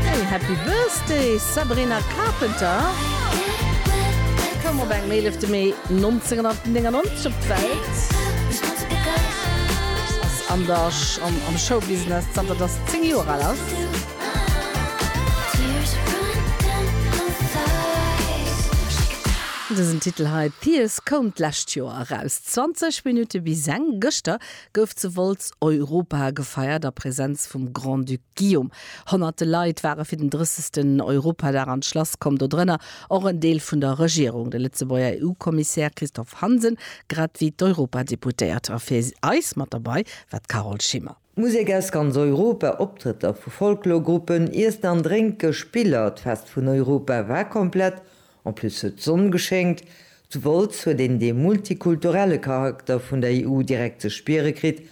Hey, happy birthday Sabrina Carpenter koum op engem 11 Mee 1999 op d'Welt an der am Showbusiness zanter dass se 10 Joer al ass. Dësen Titel hei Tears koum d'lescht Joer eraus, 20 Minutte bis eng. Gëschter gouf zu Wolz Europa gefeiert a Präsenz vum Grand-Duc Guillaume. Honnerte Leit ware fir den 30. Europadag an d'Schlass komm, dodrënner och en Deel vun der Regierung, de Lëtzebuerger EU-Kommissär Christophe Hansen, grad wéi d'Europadeputéiert. A fir eis mat derbei war d'Carole Schimmer. Musek aus ganz Europa, Optrëtter vu Folklorgruppen, Iessen an Drénke, Spiller, d'Fest vun Europa war komplett En plus huet d'Sonn geschéngt. Zu Wolz huet een dee multikulturelle Charakter vun der EU direkt ze spiere kritt,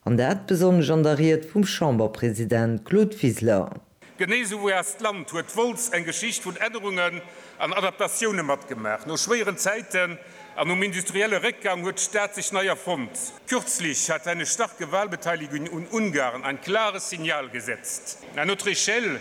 an dat besonnesch an der Ried vum Chamberpresident Claude Wiseler. Genee sou wéi eist Land huet Wolz eng Geschicht vun Ännerungen an Adaptatioune matgemaach. No schwéieren Zäiten an nom industrielle Réckgang huet d'Stad sech nei erfonnt. Kürzlech hat eine starke Wahlbeteiligung un Ungarn ein klares Signal gesetzt. À notre échelle,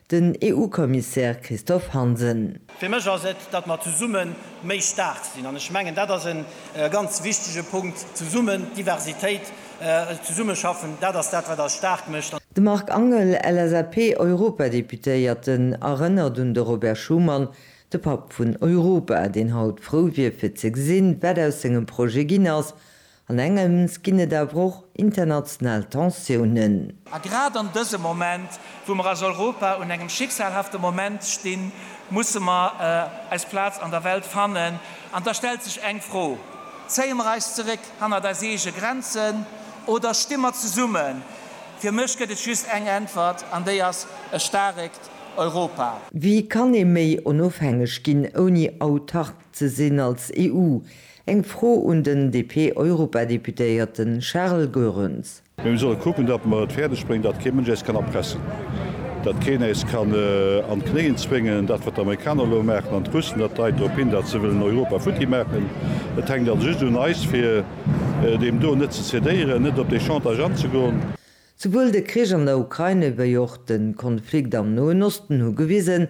Den EU-Kommissär Christophe Hansen. Fir mech ass et, datt mer zesumme méi staark sinn. An ech mengen, dat ass e ganz wichtege Punkt, zesummen, Diversitéit, zesummeschaffen, dat ass dat, wat eis staark mécht. De Marc Angel, LSAP-Europadeputéierten, erënnert un de Robert Schuman, de Papp vun Europa, deen haut frou wier fir ze gesinn, wat aus sengem Projet ginn ass, An engems ginn et awer och international Tensiounen. A grad an dësem Moment, wou mer als Europa un engem schicksalhafte Moment stinn, musse mer eis Plaz an der Welt fannen. An da stellt sech eng Fro, Zéie mer eis zeréck hannert eis eege Grenzen oder sti mer zesummen? Fir mech gëtt et just eng Äntwert, an déi ass e staarekt Europa. Wéi kann ee méi onofhängeg ginn, ouni autark ze sinn als EU? Eng Fro un den DP-Europadeputéierte Charles Goerens. Mä mir solle kucken, datt mer et fäerdeg bréngen, datt kee Mënsch äis kann erpressen, datt keen äis kann an d'Knéien zwéngen. Dat, wat d'Amerikaner elo maachen an d'Russen, dat deit drop hin, datt se wëllen Europa futti maachen. Et hänkt also just un eis, fir deem do net ze cedéieren, net op dee Chantage anzegoen. Souwuel de Krich an der Ukraine wéi och de Konflikt am Noen Osten hu gewisen,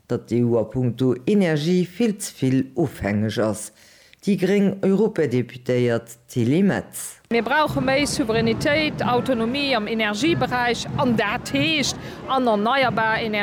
datt d'EU a punkto Energie vill ze vill ofhängeg ass. Déi gréng Europadeputéiert Tilly Metz. Mir brauche méi Souveränitéit, Autonomie am Energieberäich, an dat heescht an erneierbar Energien.